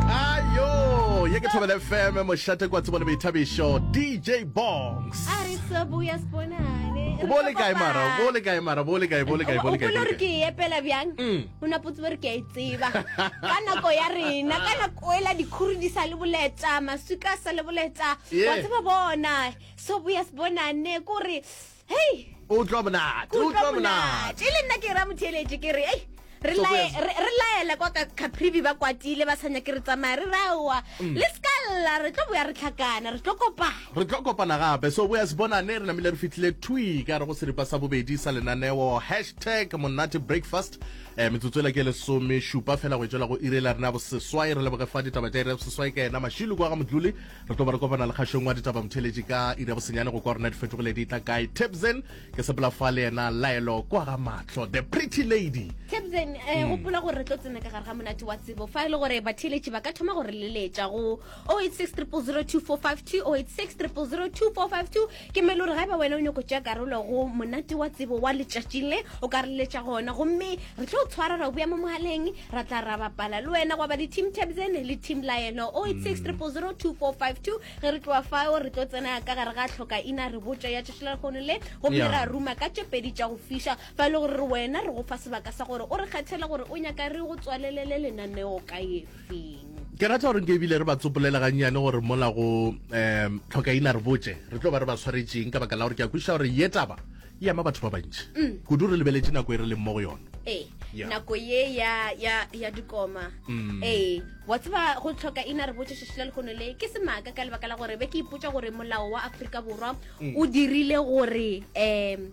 ayo ye ke thobele fm mošate kwa tsebo le boithabišo dj bongs a re sobuya sponane o bo le kae mara o bo le kae mara bo le kae bo le kae bo le kae o re ke e epela bjang mm. o na potse re ke a e tseba ka nako ya rena ka nako ela dikhuri di sa le boleta maswika sa le boleta wa tseba bona sobuya sponane kore hei o utlwa monate o utlwa monate e le nna ke ra motheeletše ke re ei re lae- re- re laele kwa ka caprivi ba kwatile ba sanya ke re tsamaya re raowa Mm. le seka lla re tlo boya re tlhakana re tlo kopana re tlo kopana gape so boya sebonane re namile re fitlhile twi ka re go seripa sa bobedi sa lenaneo hashtag monate breakfast um metsotso ela ke lesome šupa fela go e tswela go irela rena ya boseswai re leboge fa ditaba tša ira ya boseswai ka ena mašilu kwa ga modluli re tlo ba re kopana lekgašong wa ditaba motheletši ka iri ya bosenyane go kwa rona di fetogile di tla kae tipsen ke sepela fa le yena laelo kwa ga matlho the pretty lady tipsen um eh, hmm. gopola gore re tlo tsena ka gare ga monate wa tsebo fa e le gore batheletši ba ka thoma gore leletša go 086 300 2452 086 300 2452 Ke mele gore ga eba wena o nyoko tšea karolo go monate wa tsebo wa letšatši le, o ka re letša gona. Gomme re tlo tshwara ra boya mo mogaleng, ra tla ra bapala le wena. Gwa ba le team Tabzen le team Lion. 0860002452 ge re tloa fao re tlo tsena ka gare ga tlhoka ina re botša ya tšešelelakgono le gomme yeah. ra ruma ka tše pedi tša go fiša fa e le gore re wena re go fa sebaka sa gore o re kgethele gore o nyaka re go tswalelele lenaneo ka efe. seng ke rata gore nke ebile re ba tsopolela gannyane gore mola go um tlhokaina re botse re tlo ba re ba tshwaretseng ka baka la gore ke a kwešiša gore ye taba e ama batho ba bantši mm. kudu re lebeletse nako e re leng mo go yone ee yeah. nako ye ya ya ya dikoma mm. ee wa tseba go tlhoka ina re botse shishila le gone le ke semaka ka lebaka la gore be ke ipotsa gore molao wa Afrika Borwa mm. o dirile gore um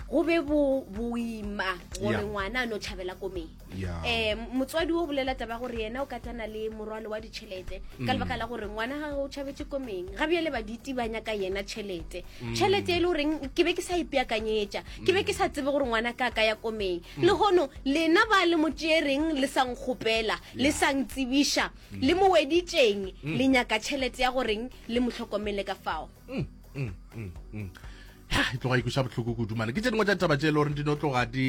go be boima gore ngwana a no tšhabela komeng yeah. eh motswadi o bolela taba gore yena o ka tana le morwalo wa ditšhelete mm. ka lebaka la gore ngwana ga o tšhabetse komeng ga bjale ba ditibanya ka yena tšhelete mm. tšhelete e le goreng ke be ke sa ipeakanyetša ke be ke sa tsebe gore ngwana ka ka ya komeng mm. le gono lena ba le motšeereng le sang kgopela le sang tsebiša mm. le moweditšeng mm. le nyaka tšhelete ya goreng le motlhokomele ka fao mm. Mm. Mm. Mm. e tloga ikuša botlhoko kodumane ke tse dingwe tša taba tše e le goreng di no tloga di